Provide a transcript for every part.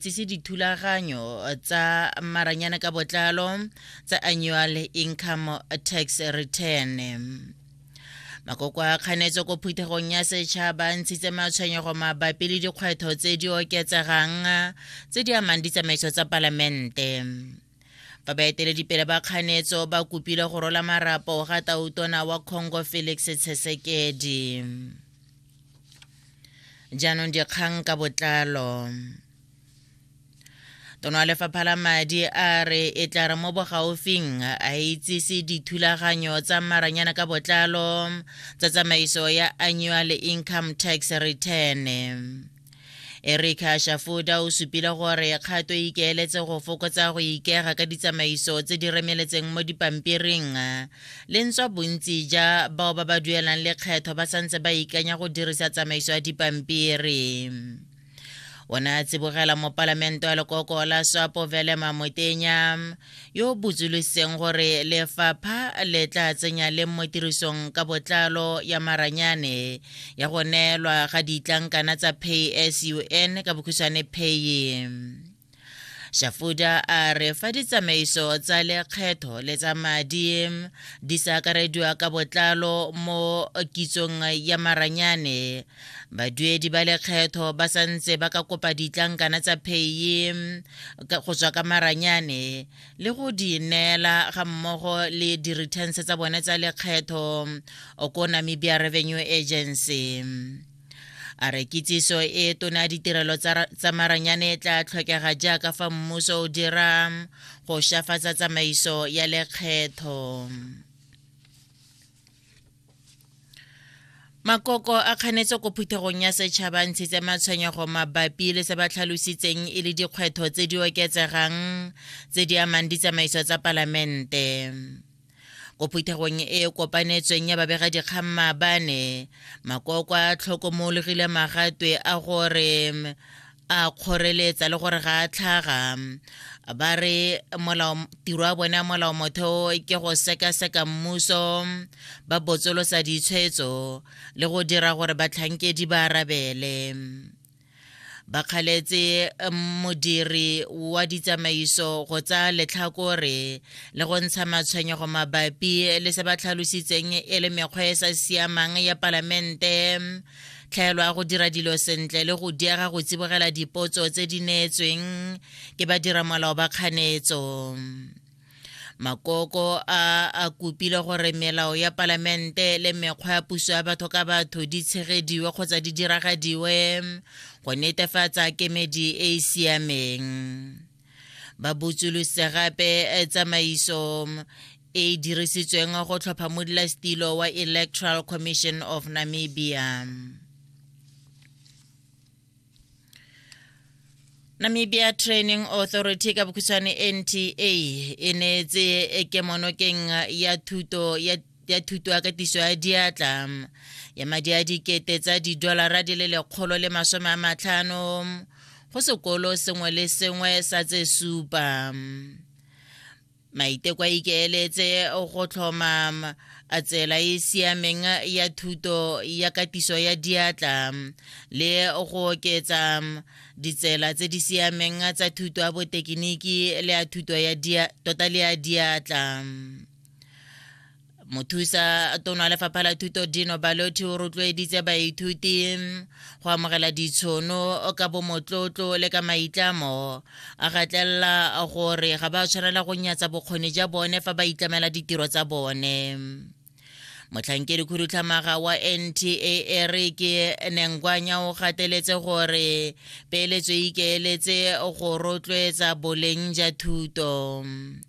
tsise dithulaganyo tsa maranyana ka botlalo tsa annual income tax return makoko a kganetso ko phuthegong ya setšhaba ntshitse matshwenyego mabapi le dikgwetlho tse di oketsegang tse di amang ditsamaiso tsa palamente fa baeteledipele ba kganetso ba kopile go rola marapo ga tautona wa congo felix tshesekedi jaanong dikgang ka botlalo tono wa lefapha la madi a re e tla re mo bogaufing a itsise dithulaganyo tsa maranyana ka botlalo tsa tsamaiso ya annual income tax return erika shafuda o supile gore kgato e ikeeletse go fokotsa go ikega ka ditsamaiso tse di remeletseng mo dipampiring le ntswa bontsi ja bao ba ba duelang lekgetho ba santse ba ikanya go dirisa tsamaiso ya dipampiri o ne a tsibogela mopalamente wa lekoko la swapo velema motenya yo o botsolositseng gore lefapha le tla tsenya le mo tirisong ka botlalo ya maranyane ya go neelwa ga ditlankana tsa pay sun ka bokhutshwane paye shafuda a re fa ditsamaiso tsa lekgetho le tsa madi di sa akarediwa ka botlalo mo kitsong ya maranyane baduedi ba lekgetho ba sa ntse ba ka kopa ditlankana tsa pheye go tswa ka maranyane le go di neela ga mmogo le di-returns tsa bone tsa lekgetho ko namibia revenue agency a re kitsiso e tona ya ditirelo tsa maranyane e tla tlhokega jaaka fa mmuso o dira go shafatsa tsamaiso ya lekgetho makoko a kganetse ko phuthegong ya setšhaba ntshitse matshwenyego mabapi le se ba tlhalositseng e le dikgwetho tse di oketsegang tse di amang ditsamaiso tsa palamente ko phuthegong e e kopanetsweng ya babega dikgang maabane makoko a tlhokomologile magatwe a gore a kgoreletsa le gore ga a tlhaga ba re tiro ya bone ya molao motheo ke go sekaseka mmuso ba botsolosa ditshwetso le go dira gore batlhankedi ba arabele ba kgaletse modiri wa ditsamaiso go tsaya letlhakore le go ntsha matshwenyego mabapi le se ba tlhalositseng e le mekgwa e sa siamang ya palamente tlhaelo ya go dira dilo sentle le go diega go tsibogela dipotso tse di neetsweng ke badiramolao ba kganetso makoko a a kopile gore melao ya palamente le mekgwa ya puso ya batho ka batho di tshegediwe kgotsa di diragadiwe go netefatsa kemedi e e siameng ba botsolose gape eh, tsamaiso e dirisitsweng go tlhopha modulasetilo wa electoral commission of namibia namibia training authority ka bokhutshwane nta e neetse kemonokeng ya thuto ya ya thuto ya katiso ya diatla ya madi a dikete tsa didolara di le lekgolo le masome a matlhano go sekolo sengwe le sengwe sa tse supa maiteko a ikeeletse go tlhoma a tsela e siameng ya thuto ya katiso ya diatla le go oketsa ditsela tse di siameng tsa thuto ya botekiniki le ya thuto ya tota le ya diatla mothusa tona lefapha la thuto dino balothi o rotloeditse baithuti go amogela ditshono ka bomotlotlo le ka maitlamo a gatlelela gore ga ba tshwanela go nyatsa bokgoni ja bone fa ba itlamela ditiro tsa bone motlhankedi khudutlhamaga wa nta re ke nengwanya o gateletse gore peeletso e ikeeletse go rotloetsa boleng ja thuto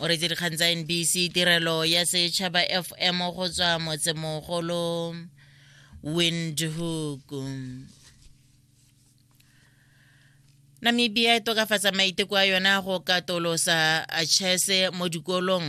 o re tse dikgang tsa nbc tirelo ya setšhaba fm go tswa motsemogolo windhoek namibia e tokafatsa maiteko a yona go katolosa chese mo dikolong